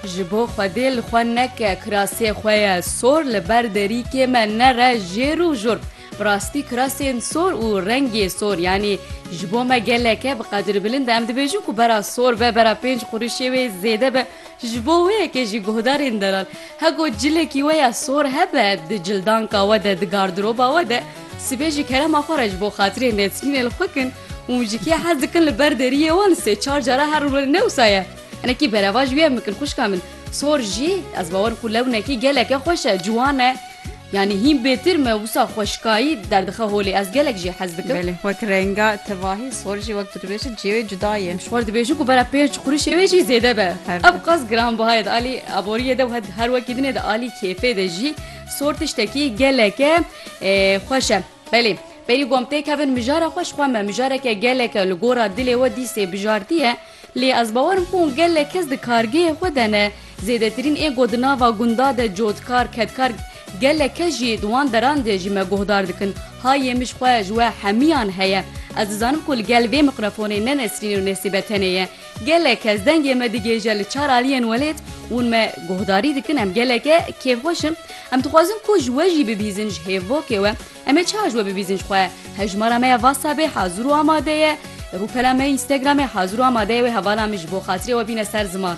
Ji bo xwedê li xwe neke kirasê xwe ye sor li ber derîkê me nere jêr û jur. Bi rastî kirasên sor û rengê sor yanî ji bo me geleke bi qedir bilind e. Em dibêjin ku bera sor be bera pênc qurişê wê zêde be. Ji bo wê yekê jî guhdarên delal hego cilekî we ya sor hebe di cildanka we de di gardiroba we de sibê ji kerema xwe re ji bo xatirê nesrînê li xwe kin. Hûn ji kê hez dikin li ber deriyê wan sê çar cara her rû li newsa ye. Hinekî berevaj wî em bikin xwişka min. Sor jî ez bawer ku lewnekî geleke xweş e, ciwan e. Yanî hîn bêtir me wisa xweşkayî derdixe holê. Ez gelek jê hez dikim. Belê wek renga tivahî sor jî wek tu dibêjî cêwê cuda ye. Ji xwe dibêjin ku bera pênc qurişê wê jî zêde be. Her Ev qas giranbiha ye di alî aboriyê de û her wekî din ê di alî kêfê de jî. Sor tiştekî geleke xweş e. Belê, berî got tê kevin mijara xwe ji xwe me mijareke gelek e li gora dilê we dîsê bijartiye lê ez bawer im ku gelek kes di kargehê xwe de ne zêdetirîn êgo di nava gunda de cotkar kedkar gelek kes jî di wan deran de jî me guhdar dikin hayê min ji xwe ji we hemiyan heye ez dizanim ku li gel vê miqrefonê ne nesrînê û nesîbe tenê ye Gelek kes dengê me digêje li çar aliyên welêt, hûn me guhdarî dikin, em geleke kêfxweş in. Em dixwazin ku ji we jî bibîzin ji hêvokê we. Em ê çawa ji we bibîzin ji xwe? Hejmara me ya Whatsappê hazir û amade ye. Rûpela me ya Instagramê hazir û amade ye wê hevala min ji bo xatirê we bîne ser ziman.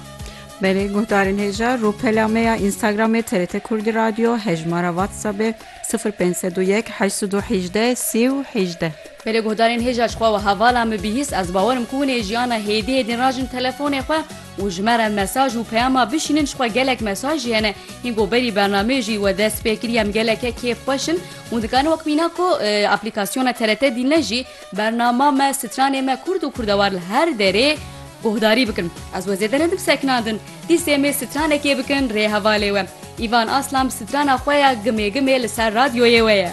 Belê guhdarên hêja, rûpela me ya Instagramê TRT Kurdî Radio, hejmara Whatsappê sifir pênc sed û yek heşt sed û hejdeh sî û hejdeh. Belê guhdarên hêja ji xwe wiha vala min bihîst, ez bawer im ku hûn ê jiyana hêdî hêdîn rajin telefonê xwe û ji me re mesaj û peyama bişînin, ji xwe gelek mesaj jî hene hîn ku berî bernameyê jî we dest pê kiriye em geleke kêf xweş in. Hûn dikarin wek mîna ku aplîkasyona TRT dîn ne jî bernama me, stranê me kurd û kurdewar li her derê guhdarî bikin. Ez we zêde nedim seknandin. Dîsê mê stranekê bikin rê hevalê we. Îvan Aslan bi strana xwe ya Gimê Gimê li ser radyoyê we ye.